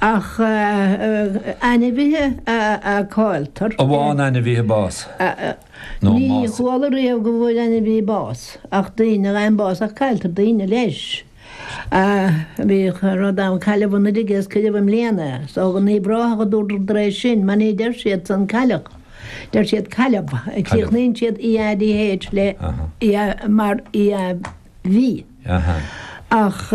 ach ainmhithe a cailltear. an bhfaigheann ainmhithe bás nó an mbásaíonn. Ní chuala riamh go bhfuair ainmhí bás ach daoine a fhaigheann bás ach cailltear daoine leis. Bhí rud ann Cailleadh anuraidh agus cuireadh i mbliana so go Naomh Ráthach a dúradar dá réir sin mar ní deir siad san Cailleach, deir siad Cailleamh, críochnaíonn siad EADH le, mar, ach.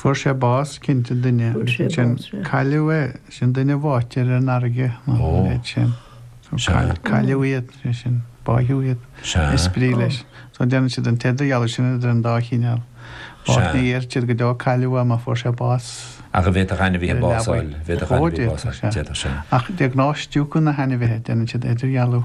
Fuair sé bás, cinnte, duine, agus ansin cailleadh é, sin duine báite ar an fharraige, nó an méid sin. Cailleadh iad, sé sin, báitheadh iad. Is brí leis. So déanann siad an t-idirdhealú sin idir an dá chineál. Bás, ní deir siad go deo cailleadh é má fuair sé bás. Ach an bhféadfadh ainmhithe bás a fháil, bhféadfadh ainmhí bás a fháil, d'fhéadfadh sin. Ach de ghnáth stiúgann na hainmhithe, déanann siad idirdhealú.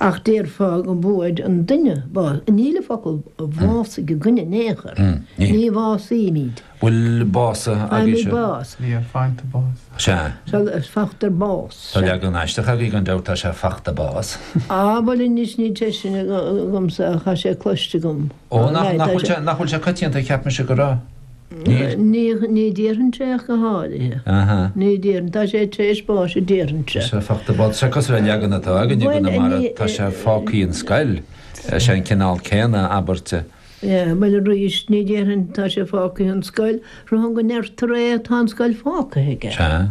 Ach déarfá go bhfuair an duine bás. Níl an focal bhásaigh againn in aon chor. Ní bhásaímid. Bhuel, básaithe agaibhse. Faighimid bás. Yeah, fachta bás. Sea. So, fachtar bás. Tá leagan aisteach agaibh gan dabht, tá sé fachta bás. Á, bhuel anois níl sé sin agamsa ach tá sé cloiste agam. Ó, nach bhfuil sé coitianta, cheap mise go raibh. Níl? Ní déarfainnse é ach go háirithe. Aha. Ní déarfainn. Tá sé tar éis báis a déarfainnse. Sea, fachta bás. Sea, cosúil le an leagan atá againn i gConamara, tá sé fágthaí an scoil. Sea, an cineál céanna abairt. Sea, bhuel arís, ní déarfainn tá sé fágthaí an scoil, braithim go ndeirtear é, tá an scoil fágtha aige. Sea.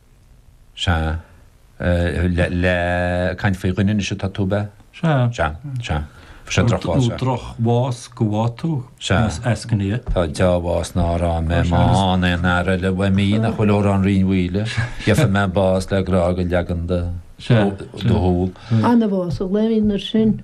Sea. Ag caint faoi dhuine anois atá tú, ab ea? Sea. Sea. Sea. Fuair sé drochbhás, sea. Nó drochbhás go bhfaighe tú, is eascaine é. Tá dea-bhás nár fhaighe mé má fhaigheann aon fhear eile uaim í nach bhfuil amhrán Rinn Mhaoile. Gheobhaidh mé bás le grá do leagan do shúl. Anbhás a ghlaoigh na sin.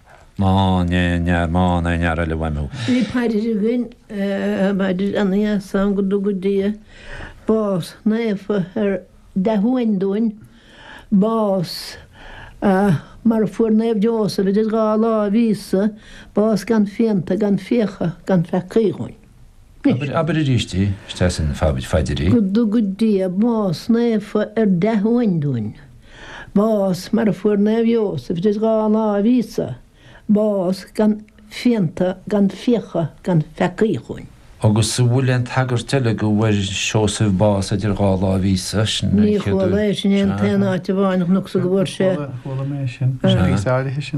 Bhí paidir againn i bpaidir an Gheasáin go dtuga Dia bás naofa ar dea-uain dúinn, bás mar a fuair Naomh Iósaf idir dhá láimh Íosa, bás gan phianta, gan fiacha, gan pheacaí dhúinn. Anois, abair arís é, is deas an phaidir í. Go dtuga Dia bás naofa ar dea-uain dúinn, bás mar a fuair Naomh Iósaf idir dhá láimh Íosa, bás gan phianta, gan fiacha, gan pheacaí dhúinn. Agus an bhfuil aon tagairt eile go bhfuair Seosamh bás idir dhá láimh Íosa? Sin an chéad uair. Ní chuala é sin an t-aon áit amháin a chonacsa go bhfuair sé. Chuala, chuala mé sin. Sin píosa áirithe sin.